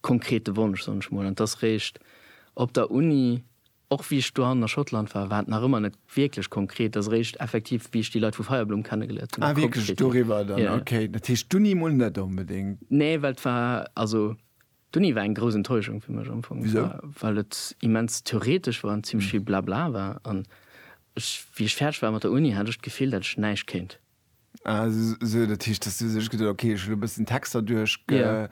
konkrete Wonsch, soen ech mol, an dass réischt op der Uni, och wéi ech dohannen a Schottland war, war et nach ëmmer net wierklech konkret, dass réischt effektiv, wéi ech déi Leit vu Feierblumm kennegeléiert hunn, da konkret ginn. Ah, wierklech doriwwer dann? Okay, dat heescht d'Uni emol net onbedéngt. Nee, well et war, also d'Uni war eng grouss Enttäuschung fir mech am Fong. Wisou? Well et immens theoretesch war an zimmlech vill Blabla war, an ech, wéi ech fäerdeg war mat der Uni, hat ech d'Gefill, dat ech näischt kéint. Ah, so, dat heescht, dass du sech geduet hues, okay, ech hunn elo e bëssen Texter duerchgeholl.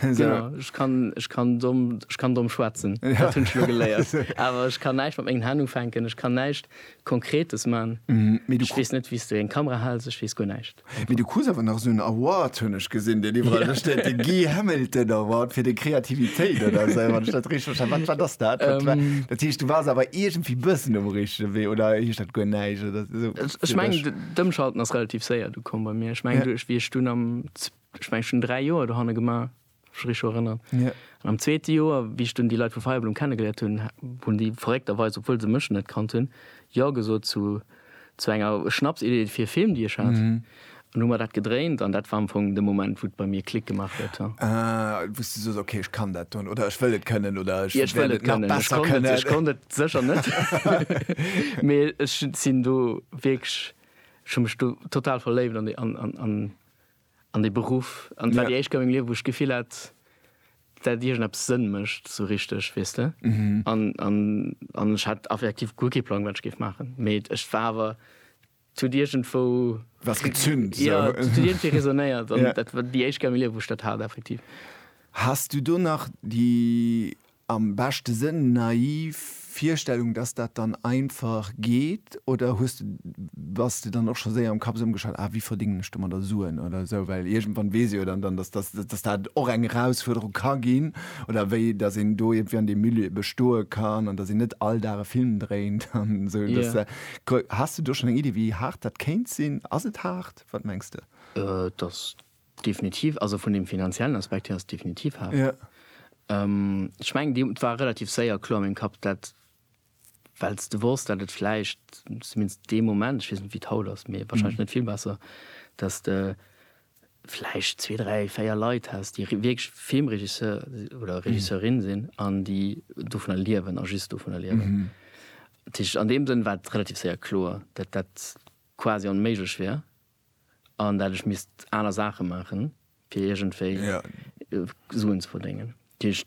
Genau, ech kann, ech kann domm, ech kann domm schwätzen, dat hunn ech elo geléiert. Awer ech kann näischt mat mengen Hänn ufänken, ech kann näischt Konkretes man. Ech weess net, wéi s de eng Kamera hals, ech weess guer näischt. Mee du krus awer nach esou en Award, hunn ech gesinn, deen iwwerall do steet, de Guy Hamilton Award fir deng Kreativitéit oder esou, wann ech dat richteg verstane. Wat, wat ass dat? Dat heescht, du waars awer iergendwéi e bëssen um richtege Wee, oder heescht dat guer näischt? So, ech meng d'Ëmschalten ass relativ séier du komm bei mir. Ech meng duerch wie ech dun am ech meng schon dräi Joer do hanne gemaach rich erënnern. Ja. An am zweete Joer wie ech dun déi Leit vu Feierblum kennengeléiert hunn, hunn déi verréckterweis, obwuel se mech net kannt hunn, jo gesot zu zu enger Schnapsidee fir e Film déi ech hat. Mhm. An hu mer dat gedréint an dat war am Fong de Moment wou et bei mir Klick gemaach huet. Ah, wou s de soos, okay, ech kann dat don oder ech wëll et kënnen oder ech wäert et nach besser kënnen. Ech konnt et sécher net, mee ech sinn do wierklech, ech hu mech do total verléift an dee, an dee Beruff an et war déi éischt Kéier a mengem Liewen wou ech d'Gefill hat, dat iergendeppes Sënn mécht esou richteg, weess de. An ech hat effektiv guer kee Plang wat ech géif maachen, mee et war awer Et huet iergendwou. Was gezünnt, esou. Ja, et huet iergendwéi résonnéiert. An dat war déi éischt Gare milieu, wou ech dat hat, effektiv. Has du do nach déi, am beschte Sënn, naiv Virstellung, dass dat dann einfach geet? Oder hues de, bass de dann och scho séier am Kapp esou ëmgeschalt, ah, wéi verdéngen ech domadder Suen oder esou? Well iergendwann weess ee jo dann, dass, dass, dass dat och eng Erausfuerderung ka ginn. Oder wéi, dass een do iergendwéi an deem Milieu bestoe kann an dass een net all Dag e Film dréint an esou. Dass, Has de do schon eng Iddi wéi haart dat kéint sinn? Ass et haart? Wat mengs de? Et ass definitiv, also vun dem finanziellen Aspekt hier ass et definitiv haart. Ech mengen déi et war relativ séier kloer a mengem Kapp dat, well s de wosst dat et vläicht, zumindest dee Moment, ech weess net wéi et haut ass, mee wahrscheinlech net vill besser, dat s de, vläicht zwee, dräi, véier Leit häss, déi wierklech Filmregisseur oder Regisseurin sinn an déi dovunner liewen a just dovunner liewen. Dat heescht, an deem Sënn war et relativ séier kloer, datt dat quasi onméiglech wier an dat ech misst aner Saache maachen, fir iergendwéi Suen ze verdéngen. Dat heescht,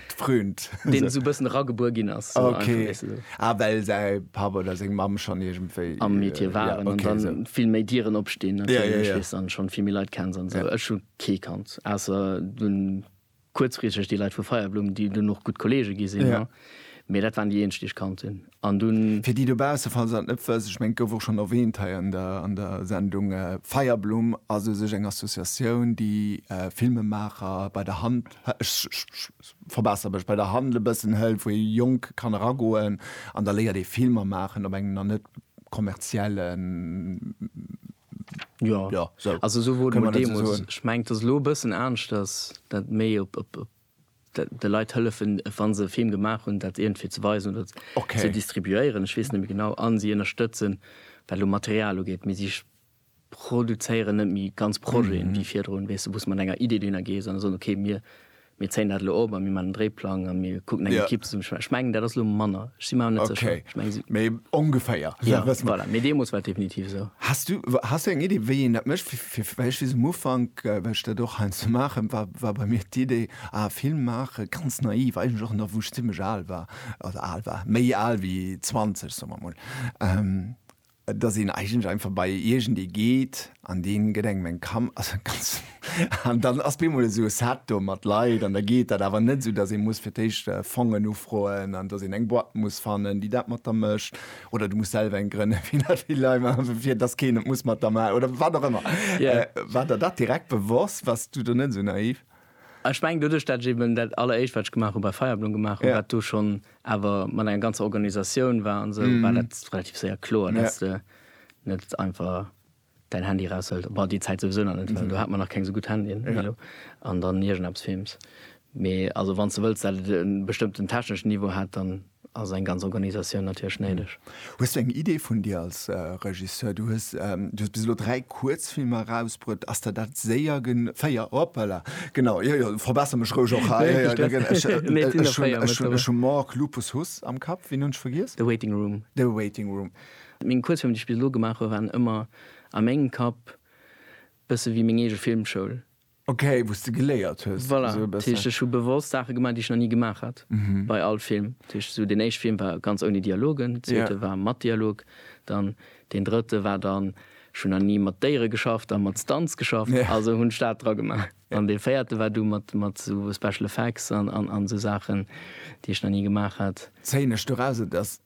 Fründ. Deen esou e bëssen eragebuer ginn ass. So okay. Einfach, weißt du, so. Ah, well säi Papp oder seng Mamm schonn iergendwéi. Am Metier äh, waren. Ja, okay, an dann so. vill méi Dieren opstinn. Ja, ja, ja. Weißt, an schonn vill méi Leit kenns an sou. Ja. Ech hu kee kannt. Ausser dunn kuerzfristeg déi Leit vu Feierblumm, déi dunn och gutt Kollege gi sinn. Ja. Mee dat waren déi eenzeg, déi ech kannt hunn. An dunn. Fir déi dobausse, falls se dat net wëssen, ech mengen, et gouf och schonn erwähnt hei an der, an der Sendung, Feierblumm ass u sech eng Associatioun, déi Filmemaacher bei der Hand, ech verbesser mech, bei der Hand e bëssen hëlt, wou ee Jonk kann eragoen an da léiert ee Filmer maachen op engem nach net kommerziellen, jo, sou, kann een dat esou soen? Jo, also esou wor dat deemools. Ech mengen, et ass elo e bëssen aneschters, dat méi op, op, op. de Leit hëllefen, wa se e Film gemaach hunn, dat iergendwéi ze weisen oder ze distribuéieren, ech weess net méi genau, a si ënnerstëtzen, wat elo Material ugeet, mee si produzéieren net méi ganz Projeten, wéi virdrun, weess de, wou s de mat enger Idee dohinner gees an soen, okay, mir zéien dat elo op a mir maachen en Dréiplang a mir kucken eng Ekipp ze summen. Ech mengen, dat ass elo manner, ech si mer awer net sécher. Ech menge si. Mee ongeféier. Voilà, mee deemools war et definitiv esou. Has du eng Iddi, wéi een dat mécht? Fir wéiech wiss um Ufank, well ech dat och heiansdo ze maachen, war war bei mir d'Idee, ah Film maache ganz naiv, eigentlech och nach wou ech zimlech al war, also al war, méi al wéi 20, soe mer emol, dass een eigentlech einfach bei iergendee geet an dee gëtt engem eng Kam also ganz an dann ass bemol esou e Set do mat Leit an da geet dat, awer net esou, dass ee muss fir d'éischt Fongen ufroen an dass een eng Boîte muss fannen, déi dat mat der mécht. oder du muss selwer eng grënne fir dass keen et muss mat der ma oder wat och ëmmer yeah. äh, wat der dat direkt bewoss was du du net so naiv Ech meng du duch dat eben dat aller Eich wat gemacht bei Feierblung gemacht yeah. wat du schon awer man eng ganz Organisatioun war an se so, mm. war net relativ séier klo yeah. net einfach Däin Handy raushëlt, bah déi Zäit souwisou nach net, well do hat mer nach keng esou gutt Handyen wéi elo, an dann iergendeppes films. Mee also wann s de wëlls, dat et e bestëmmten techneschen Niveau hätt, dann ass eng ganz Organisatioun natierlech néideg. Hues du eng Idee vun dir als Regisseur? Du hues bis elo dräi Kuerzfilmer erausbruet. Ass der dat séier gen. Véier, hoppala, genau, jo jo, verbesser mech roueg och hei. Ech hunn Mork, Lupus, Huss am Kapp. Ween hunn ech vergiess? The Waiting Room. The Waiting Room. Meng Kuerzfilmer, déi ech bis elo gemaach hu waren ëmmer a mengem Kapp bësse wéi meng eege Filmschoul. Ok, wou s de geléiert hues. Voilà, dat heescht ech hu bewosst Saache gemaach, déi ech nach ni gemaach hat bei all Film. Dat heescht esou deen éischte Film war ganz ouni Dialogen, deen zweete war mat Dialog, dann deen drëtte war dann, ech hunn nach ni mat Déiere geschafft a mat Stunts geschafft, also hunn ech dat dra gemaach. An dee véierte war du mat esou Special Effects an esou Saachen, déi ech nach ni gemaach hat. Zéien ech doraus, et ass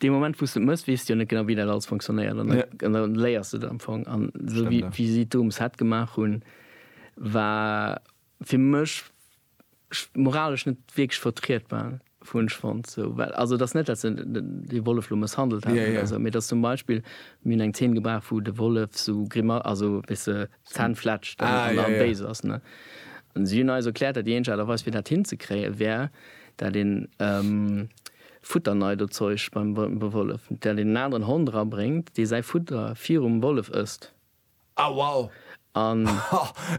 Dee Moment wou s de et mëss, weess de jo net genau wéi dat alles funktionéiert an da léiers de et am Fong. An esou wéi si et do um Set gemaach hunn, war fir mech moralesch net wierklech vertrietbar, hunn ech fonnt. Esou well also et ass net dat se de Wollef lo mësshandelt hätten oder esou, mee et ass zum Beispill, mir hunn eng Zeen gebraucht wou de Wollef esou Grima, also wéi se D'Zänn fletschen an da béis ass. An si hunn eis erkläert, dat déi eenzeg Aart a Weis fir dat hinzekréien, wär dat een Futterneidozeuch beim Wollef, dat een en aneren Hond erabréngt, dee säi Futter virum Wollef ësst. Ah wow! An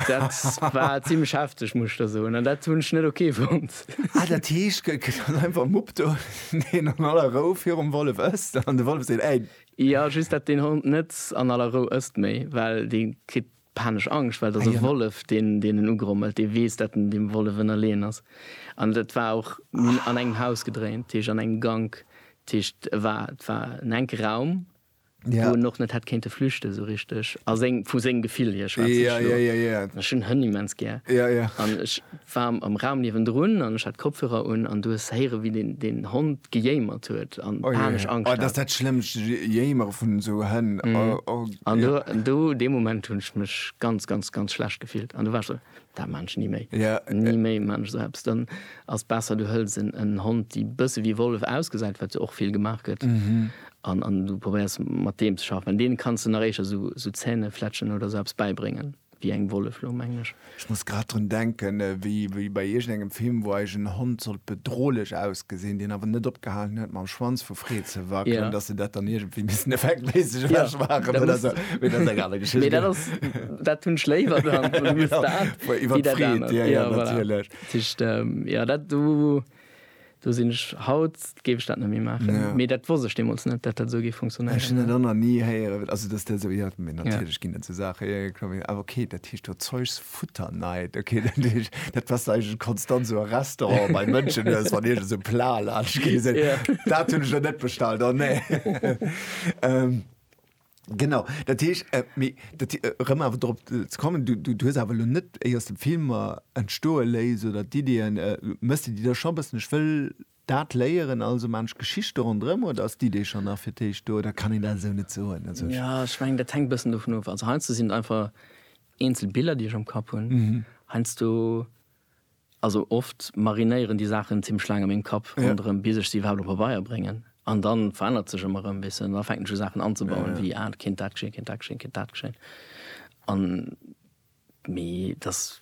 dat war zimmlech hefteg, muss ech der soen. An dat hunn ech net ok fonnt. Ah dat heescht, gëtt dann einfach Mupp do, deen an aller Rou virum Wollef ësst an de Wollef seet, Ey! Jo just dat deen Hond net an aller Rou ësst méi well dee kritt panesch Angscht well et ass e Wollef deen deen en ugrommelt, dee weess dat en deem Wollef ënnerleeën ass an dat war och, mir hunn an engem Haus gedréint, dat heescht an engem Gank, dat heescht e war et war en enke Raum wou en och net hätt kéinte flüchte sou richteg a seng vu sengem Gefill hier schwätze ech elo an ech hunn Hënn immens gär an ech war am Raum niewendrun an ech hat Kopfhörer un an du hues héiere wéi deen deen Hond gejéimert huet an panesch Angscht hat. Oh jee, oh dat ass dat schlëmmst, Jéimere vun esou Hënn, oh. An do, do dee Moment hunn ech mech ganz, ganz, ganz schlecht gefillt an do war ech esou, dat maan ech ni méi, ni méi maan ech esou eppes. Dann ass besser du hëls en Hond déi bësse wéi Wollef ausgesäit, wat jo och vill gemaach gëtt, an du probéiers mat deem ze schaffen, well deene kanns de nach éischer esou Zähnefletschen oder esou eppes bäibréngen. Wéi eng Wollef lo, mengen ech? Ech muss grad drun denken, wéi bei iergendengem Film, wou eis en Hond sollt bedrohlech ausgesinn, deen awer net opgehalen huet mam Schwanz vu Freed ze wackelen, dass se dat dann iergendwéi missen effektméisseg ewech maachen oder sou. Mee dat ass eng aner Geschicht. Mee dat ass, dat hunn ech léiwer dann, wann et muss dat wéi dat anert. Iwwer d'Freed, jo, jo, natierlech. Voilà. Dat heescht, jo, dat do. Do sinn ech, haut géif ech dat net méi maachen. Ja. Mee dat wosst ech deemools net, datt dat esou géif funktionéieren. Ech hunn dat och nach ni héieren, also datt dat esou, jo, mee natierlech ginn et esou Saachen, jo, jo, kloer, awer okay, dat heescht do Zeugs futter night, okay, dat heescht, dat passt eigentlech konstant esou a Restauranten bei Mënschen, du hues, wann iergend esou Plat laanscht geet, se, dat hunn ech der net bestallt, oh nee. Genau, dat heesch, äh, mee, dat, äh, rëm awer drop äh, ze kommen, du, du, du hues awer lo net éi aus dem Filmer entstoe léis oder d'Ideeën, äh, méchs de déi da scho bëssen, ech wëll dat léieren, also man ech Geschichte ronderëm, oder ass d'Idee schonn nach fir d'éischt do, oder kann een dat esou net soen? Also ech. Ja, ech mengen, dat hänkt bëssen dovun of. Also heiansdo sinn et einfach eenzel Biller, déi ech am Kapp hunn. Heiansdo Also oft marinéieren déi Saachen zimmlech laang a mengem Kapp ronderëm, bis ech se iwwerhaapt op Pabeier bréngen. An da verännert sech ëmmer erëm e bëssen. An da fänken ech u Saachen anzebauen, wéi, ah, et kéint dat geschéien, et kéint dat geschéien, et kéint dat geschéien. An, mee et ass,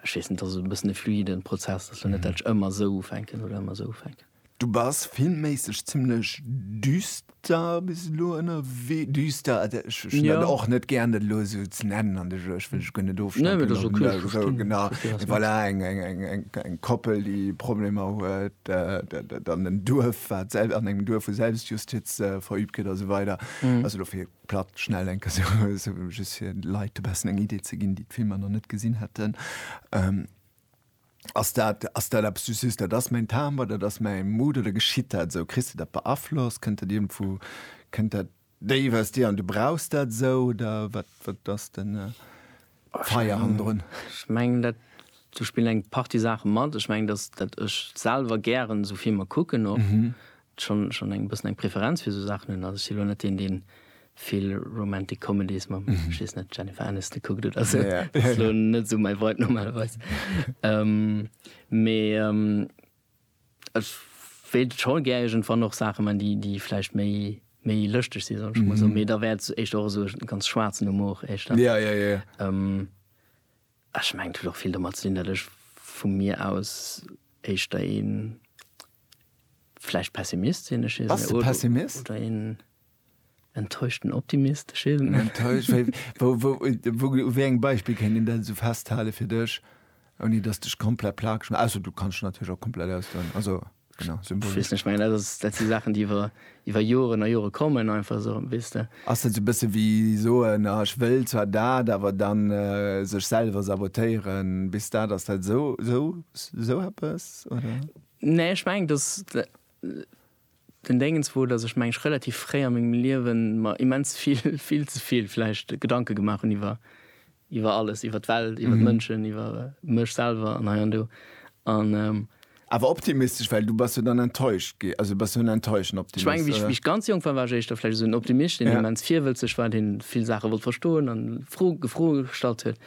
ech weess net, et ass e bëssen e fluiden Prozess. Et ass jo net, dat ech ëmmer esou ufänken oder ëmmer esou ufänken. Du bass filmméisseg zimlech düster bis elo ënnerwee. Düster, also ech hunn dat Ja. och net gären, dat elo esou ze nennen an de Jeux. Ech wëll dech guer net Nee, ofstempelen. mee dat ass okay, ech Esou, verstinn, genau. ech verstinn, wat s Voilà, mengs. eng, eng, eng, eng, eng Koppel, déi Problemer huet, dat, dat an en Duerf, wat selb, an engem Duerf, wou Selbstjustiz verübt gëtt a sou weider. Also elo fir platt schnell eng Kéier esou, esou just fir de Leit e bessen eng Idee ze ginn, déi d'Filmer nach net gesinn hätten. Ass dat, ass dat eppes, du sees, dat ass mäin Timbre, dat ass mäi Mood, oder geschitt dat esou? Kriss de dat beaflosst? Kënnt dat iergendwou, kënnt dat déif aus dir an du brauchs dat esou, oder wat, wat ass den Feier hannendrun? Ech mengen dat, do spillen eng Partie Saache mat. Ech mengen, dass dat ech selwer gären esou Filmer kucken och. schonn schonn eng bëssen eng Preferenz fir esou Saachen hunn. Also ech si lo net deen, dee vill Romantic Comedies mam, ech weess net, Jennifer Aniston kuckt oder esou. Ja, ja. Ass lo net esou mäi Vibe normalerweis. ähm, mee ähm, ech wéilt scho gär iergendwann och Saache man, déi, déi vläicht méi méi lëschteg si soll ech emol soen. Mee da wär et éischter och esou e ganz schwaarzen Humor éischter. Ja, ja, ja. Ähm, Ech mengen et huet och vill domat ze dinn, datt ech vu mir aus éischter ee vläicht Pessimist sinn. Ech weess net. Pessimist? Oder een enttäuschten Optimist. Ech weess et net. Enttäuscht? Wéi, wou, wou, wou, u wéi engem Beispill kéint een dat esou festhalen fir dech, ouni datt s de dech komplett plakeg, ausser du kanns dech natierlech och komplett ausdoen. Also. Genau, symbolisch. Weess net, ech mengen dat ass, dat si Saachen déi iwwer, iwwer Joren a Jore kommen einfach esou, weess de. Ass dat esou e bësse wéi soen, ah ech wëll zwar dat, awer dann sech selwer sabotéieren, bis dat ass dat esou, esou, esou eppes oder? Nee, ech mengen dass den Déngens wor, dass ech mengen ech relativ fréi a mengem Liewen mer immens vill, vill ze vill vläicht Gedanke gemaach hunn iwwer Iwwer alles, iwwer d'Welt, iwwer d'Mënschen, iwwer mech selwer an hei an do. An. Awer optimistesch, well du bass jo dann enttäuscht gi, also bass jo en enttäuschten Optimist, oder? Ech menge, wéi ech ganz jonk war, war ech éischter vläicht esou en Optimist, deen immens virwëlzeg war, dee vill Saache wollt verstoen an Fro, Froe gestallt huet.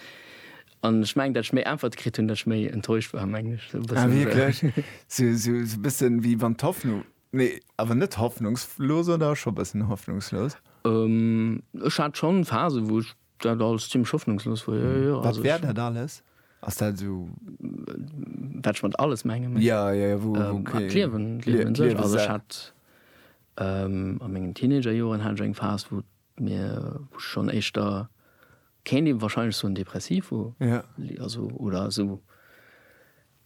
An ech mengen, datt ech méi Äntwerte kritt hunn, datt ech méi enttäuscht war, mengen ech. Esou e bëssen. Ah, wierklech? Esou, esou e bëssen, wéi wann d'Hoffnung, nee, awer net hoffnungslos, oder scho e bëssen hoffnungslos? Ech hat schonn Phasen, wou ech Dat alles zimmlech hoffnungslos wor, jo, jo. Wat wär dat alles? Ass dat esou. Wat ech mat alles menge méi. Jo, jo, jo, wou, wou, okay. D'Liewen, d'Liewen un sech. Also ech hat a mengen Teenagerjoren hat ech eng Phas, wou mir, wou ech schonn éischter, kéint ee wahrscheinlech soen, depressiv wor. Ja. Also, oder esou,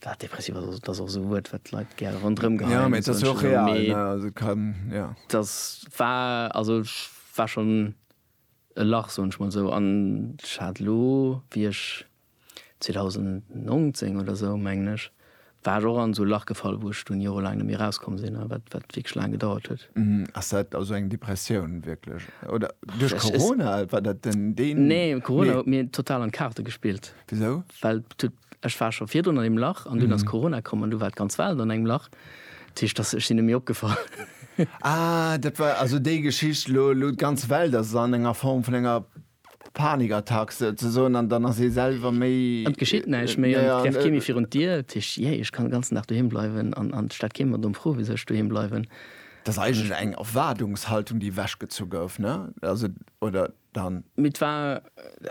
wat depressiv ass, ass, dat ass och esou e Wuert, wat d'Leit gär ronderëm geheien. Jo, mee et ass jo och real, ne? Also et kann, jo. Dat war, also ech war schonn. e Lach, soen ech mol esou, an ech hat elo, wéi ech 2019 oder esou, mengen ech, war ech och an esou e Lach gefall, wou ech dunn jorelaang net méi erauskomm sinn a wat wierklech laang gedauert huet. Ass dat also eng Depressioun wierklech oder duerch Corona? War dat den? Nee, Corona huet mir total an d'Kaarte gespillt. Wisou? Well et huet Ech war scho virdrun an deem Lach an dunn ass Corona komm an du war d'ganz Welt an engem Lach. Dat heescht, dass, ech sinn net méi opgefall. Ah, dat war also déi Geschicht, elo, elo d'ganz Welt ass an enger Form vun enger Panikattack souzesoen an dann ass ee selwer méi. An et geschitt näischt méi an et trefft kee méi virun d'Dier. Dat heescht, jee, ech kann de ganzen Dag doheem bleiwen an et stellt kee mer domm Fro, wisou ech doheem bleiwen. Dat ass eigentlech eng Erwaardungshaltung, déi ewechgezu gouf, ne? Also, oder? dann. Mee et war,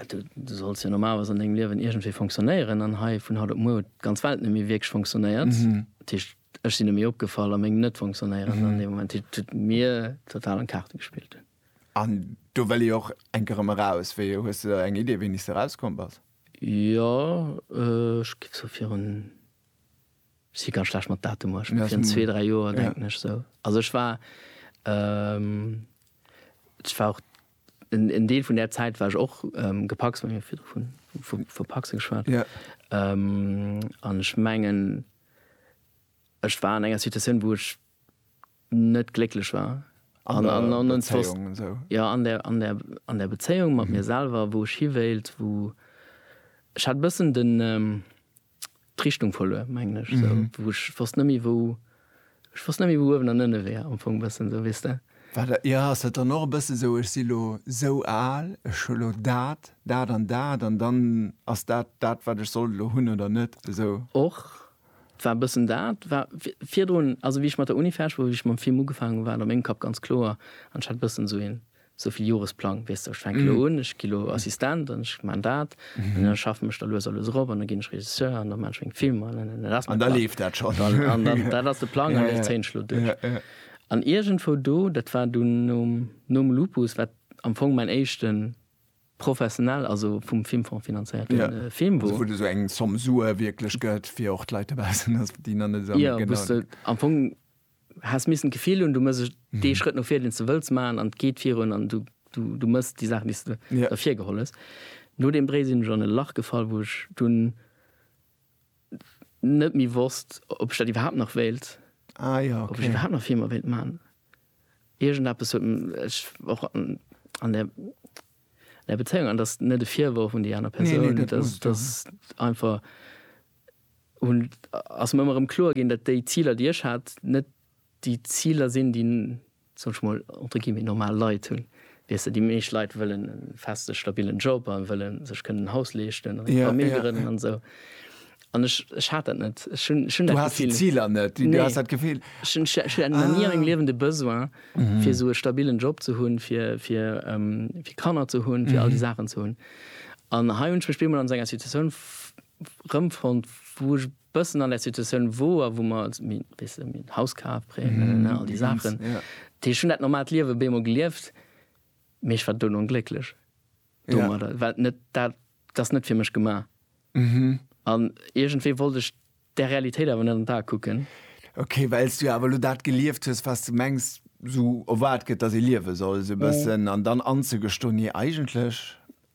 du solls jo normalerweis an dengem Liewen iergendwéi fonctionnéieren an hei vun haut op muer huet d'ganz Welt net méi wierklech fonctionnéiert. Dat heescht, ech sinn net méi opgefall a meng Net-Fonctionnéieren an deem Moment. Dat heescht, et huet mir total an d'Kaarte gespillt. An do wëll ee och enk erëm eraus. Wéi, hues de da eng Idee, wéini s de erauskomm bass? Jo, ech géif sou virun. Ech si ganz schlecht mat Datumer. Ech war virun zwee, dräi Joer, denken ech esou. Also ech war, ech war och, en Deel vun där Zäit war ech och gepacst, mir hu virdru vu verpacse geschwat. An ech mengen, ech war an enger Situatioun, wou ech net glécklech war. An der Bezéiung an sou? Jo, an der Bezéiung mat mir selwer, wou ech hiwéilt, wou, ech hat e bëssen den, d'Richtung verluer mengen ech sou mhm. wou ech fast nëmi wou ech fast nëmi wou uewen an ënne wär am Fong bëssen sou wisst der Warte, ja ass dat dann och e bësse sou ech si lo sou al ech hu lo dat dat an dat an dann ass dat dat wat ech soll lo hunn oder net sou och war bëssen dat war virdrun also wie ich mat der Uni fäsch wou ich mam Film ugefaangen war am eng Kapp ganz kloer an hat bëssen sou hin Sou vill Joresplang, weess de, ech fänke lo un, ech gi lo Assistent an ech maan dat an da schaffen ech da lues a lues erop an da ginn ech Regisseur an da maan ech meng Filmer an da dat ass mäin Plang. An da leeft dat schonn. An dann, dat ass de Plang an dee zéien ech lo duerch. An iergendwou do, dat war dunn nom, nom Lupus, wat am Fong mäin éischte professionell, also vum Filmfong finanzéierte Film wor. Also wou de sou eng Somme Sue wierklech gëtt, fir och d'Leit dobaussen, déi nach net esou genau. Jo, wou s de am Fong Häss missen d'Gefill hunn, du mëss dee Schrëtt no vir, deen s de wëlls maachen, an et geet virun, an du mëss déi Saachen, déi s de ervir geholl hues. No deem Bréi sinn ech an e Lach gefall, wou ech dunn net méi wosst, ob ech dat iwwerhaapt nach wéilt, ob ech iwwerhaapt nach Filmer wéilt maachen. Iergendeppes huet mech och an der Bezéiung, an dat ass net e Virworf un déi aner Persoun, dat ass einfach, hunn, ass mer ëmmer erëm kloer ginn, datt déi Ziler, déi ech hat, net déi Ziler sinn, déi, soll ech mol, entre guillemets, normal Leit hunn. Weess de, déi meescht Leit wëllen e feste stabilen Job a wëlle sech kënnen en Haus leeschten an eng Famill grënnen an esou. An ech, ech hat dat net. Ech hunn, ech hunn dat Gefill. Du has déi Ziler net. Nee. Du has dat Gefill. Ech hunn, ech hat nach ni a mengem Liewen de Besoin, fir esou e stabilen Job ze hunn, fir, fir, fir Kanner ze hunn, fir all déi Saachen ze hunn. An hei hunn ech mech bemol an esou enger Situatioun rëmfonnt wou ech bëssen an der Situatioun woer wou mer minn wisse minn Haus kaf Prêten all déi Saachen dat heescht hunn dat normaalt Liewe beemol gelieft mee ech war duerno onglécklech domadder well net dat ass net fir mech gema an iergendwéi wollt ech där Realitéit awer net an d'A kucken. Ok well s du awer elo dat gelieft hues wat s de mengs esou erwaart gëtt datt ee liewe soll esou e bëssen an dann anzegestoen nee eigentlech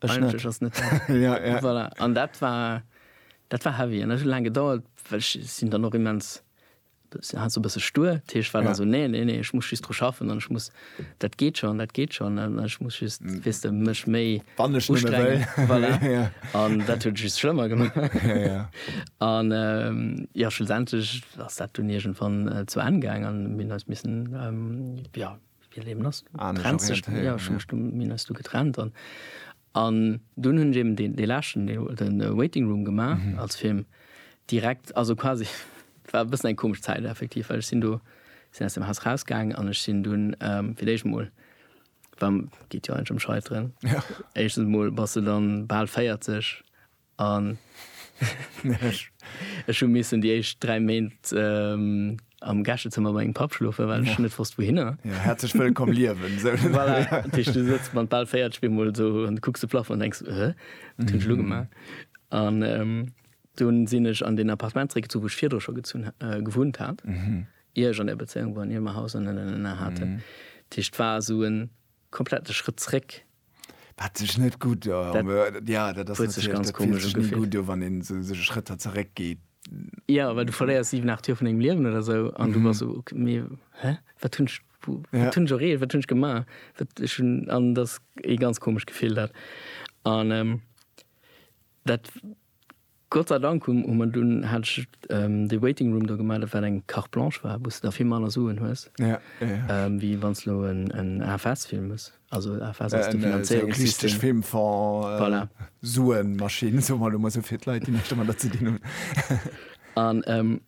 Ech net. Eigentlech ass net dat. Ja, ja. Voilà. An dat war, dat war heavy. An dat huet laang gedauert, well ech sinn dann och immens, si hat esou e bësse stur. Dat heescht, war dann esou, nee, nee, nee, ech muss just dru schaffen an ech muss, dat geet schonn, dat geet schonn an ech muss just, weess de, mech méi Wann ech nëmme wëll. ustrengen. Voilà. Ja. An dat huet et just schlëmmer gemaach. Ja, ja. An ähm, jo, schlussendlech ass dat dunn iergendwann äh, zu Enn gaang an mir hunn eis missen, ähm, jo, an dun hunn eben den de läschen den waiting room gemaach als Film direkt also quasi war bëssen eng komesch Zäit effektiv well ech sinn do sinn aus dem Haus rausgaangen an ech sinn dunn fir d'éischt emol geet jo eigentlech em scheiteren éischtens mol bass de dann bal 40 An ech hu missen déi éischt 3 Méint am Gäschezëmmer bei mengem Papp schlofen, well ech net wosst wouhinner. Jo, häerzlech wëllkomm liewen! Voilà, dat heescht, du sëtz mat bal 40 op eemol esou an kucks de Plafong an denks, Hä, wat hunn ech elo gemaach? An dunn sinn ech an deen Appartement zeréckgezunn, wou ech virdru scho gezunn, gewunnt hat, ier ech an där Bezéiung war an ier mer Haus an Elena haten. Dat heescht, et war esou e komplette Schrëtt zeréck. Wat sech net gutt do wann een sech e Schrëtt hat zeréck geet. Jo, well du verléiers 7, 8 Joer vun dengem Liewen oder esou an du bass esou, mee hä, wat hunn ech, wat hunn ech erreecht, wat hunn ech gemaach? Wat ech hunn, an dat ass ee ganz komescht Gefill dat. An dat. Gott sei Dank um Moment dunn hat ech dee Waiting Room do gemellt, wat eng Carte Blanche war, wou s de da vill manner Suen hues, wéi wann s elo en AFS fillen muss. Also AFS ass de Finanzéierungssystem. Voilà. Suenmaschinn, soe mer elo mol esou fir d'Leit, déi näischt domadder ze dinn hunn.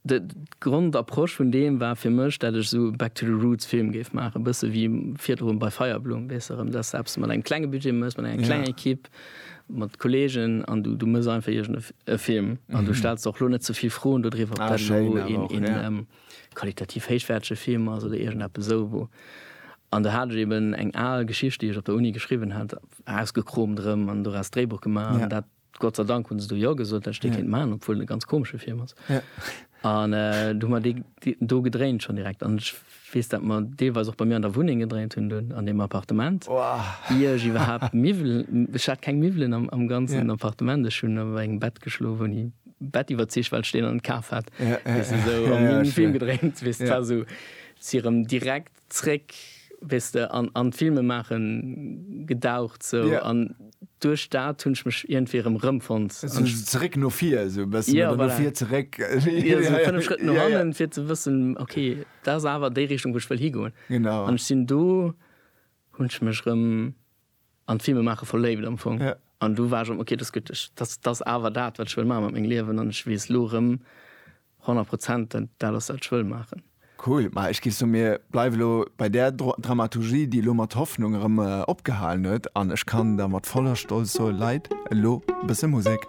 D' Grondapproche vun deem war fir mech, dat ech esou Back to the Roots Film géif maachen, e bësse wéi virdrun bei Feierblumm, weess de, rëm dass de eppes mat engem klenge Budget méchs, mat enger klenger Ekipp, mat Kolleegen an du du méchs einfach iergend e Film an du stells der och elo net ze vill Froen dodriwwer, ob dat elo een qualitativ héichwäertege Film ass oder iergend eppes esou, wou. An do hat ech eben eng al Geschicht, déi ech op der Uni geschriwwen hat, ausgekromt erëm an doraus d'Dréibuch gemaach an dat. Gott sei Dank hunn se do Jo gesot, well ech dee kéint maachen, obwuel et e ganz komesche Film ass. An du hu mer dee do gedréint schonn direkt. An ech weess, dat mer deelweis och bei mir an der Wunneng gedréint hunn dunn, an deem Appartement, ier ech iwwerhaapt Miwwelen, ech hat keng Miwwelen am ganzen Appartement, ech hunn op engem Bett geschlof, hunn ee Bett iwwerzeegt, well ech deen an kaf hat, weess de, esou, a mir hunn e Film gedréint, weess de, et war esou, si erëm direkt Zréck, weess de, an an d'Filmemaache gedaucht sou. Yeah. An duerch dat hunn ech mech iergendwéi erëm rëmfonnt. Sou zeréck no vir esou e bëssen. Yeah, voilà. Oder no vir zeréck. Jo, sou fënnef Schrëtt no hannen, yeah, yeah. fir ze wëssen, ok, dat ass awer déi Richtung, wou ech wëll higoen. Genau. An ech sinn do, hunn ech mech erëm. an d'Filme maache verléift am Fong. Ja. An du war schon ok, dass gutt, ech, dass, dass awer dat, wat ech wëll maache mat mengem Liewen, an ech weess elo erëm 100 Prozent, dat dat ass, wat ech wëll maachen. Cool, ma ech géif soen, mir bleiwe lo bei där Dramaturgie, déi elo mat Hoffnung erëm opgehalen huet, an ech kann da mat voller Stolz soen, Leit, elo e bësse Musek.